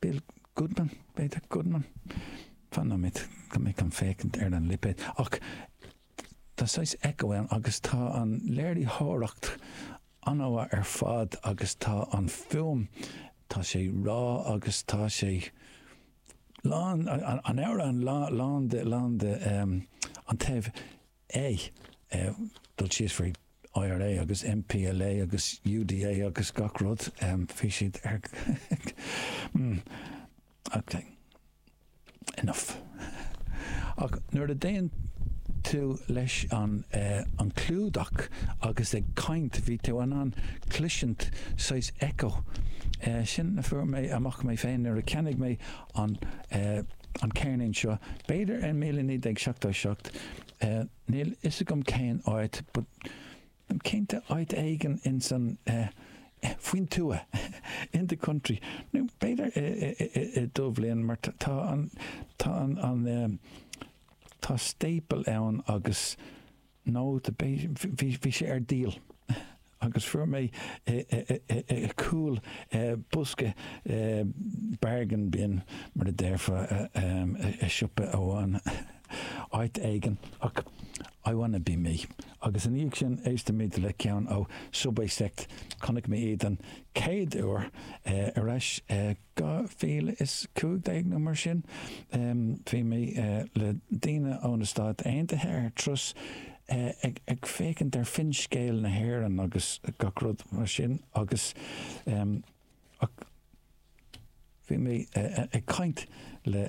Ba Goodman, b'fhéidir? Goodman? Fan nóiméad, tá mé chun féachaint ar an lipéad. Ach tá saghas echo ann agus tá an léiritheoireacht an-mhaith ar fad agus tá an fuaim, tá sé raw agus tá sé lán, an amhrán lán de, lán de an taobh é dul síos faoin IRA agus MPLA agus UDA agus gach rud, bhí siad ag rá OK, enough. Ach nuair a dtéann tú leis an clúdach agus ag caint, bhí tú in ann cloisint saghas echo. Sin a fuair mé amach mé féin nuair a cheannaigh mé an an ceirnín seo, b'fhéidir ar 1977, níl fhios agam cén áit ach go cinnte áit éigin ins an faoin tuath in the country nó b'fhéidir i i Duibhlinn mar tá an tá an an tá staple ann agus nó tá bhí bhí bhí sé ar díol agus fuair mé i i i cúl bosca bargain bin mar a déarfá i siopa amháin áit éigin ach I wanna be me agus ina dhiaidh sin éistfimid le ceann ó Subway Sect chonaic mé iad den chéad uair ar ais 2015 nó mar sin, bhí mé le daoine ó na Stáit Aontaithe ar turas ag féachaint ar finscéal na hÉireann agus gach rud mar sin agus bhí mé ag caint le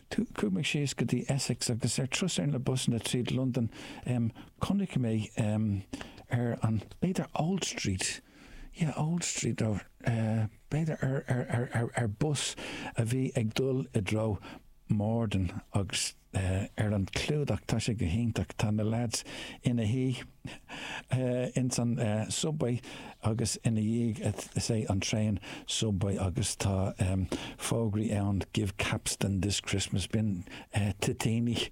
Chuaigh mé síos go dtí Essex agus ar turas ar na busanna tríd Londain chonaic mé ar an, b'fhéidir Old Street, yeah Old Street or b'fhéidir ar, ar, ar, ar, ar bus a bhí ag dul i dtreo Morden agus ar an gclúdach, tá sé go hiontach, tá na lads ina shuí, ins an subway agus ina dhiaidh is é an traein subway agus tá fógraí ann give Capstan this Christmas sin toitíní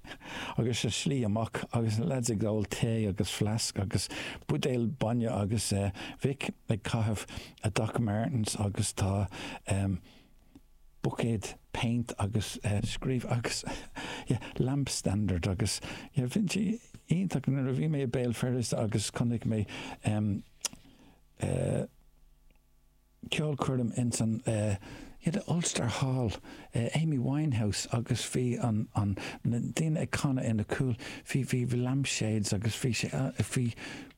agus tá slí amach agus lads ag ól tae agus fleasc agus buidéal bainne agus Vic ag caitheamh a doc martens agus tá. buicéad péint agus scríobh agus yeah lamp standard agus yeah bhí sé iontach nuair a bhí mé i Béal Feirste agus chonaic mé em eh ceolchoirm ins an eh yeah the Ulster Hall eh Amy Winehouse agus bhí an an na daoine ag canadh ina cúl bhí bhí lampshades agus bhí sé bhí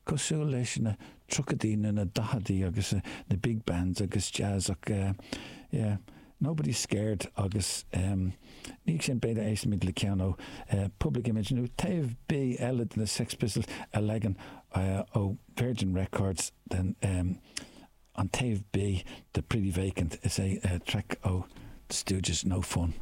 cosúil leis na tríochaidí nó na daicheadaí agus na big bands agus jazz ach yeah, Nobody's Scared agus i ndiaidh sin, b'fhéidir éistfimid le ceann ó Public Image nó taobh B eile de na Sex Pistols a leagan ó Virgin Records den, an taobh B de Pretty Vacant, is é traic ó The Stooges, No Fun.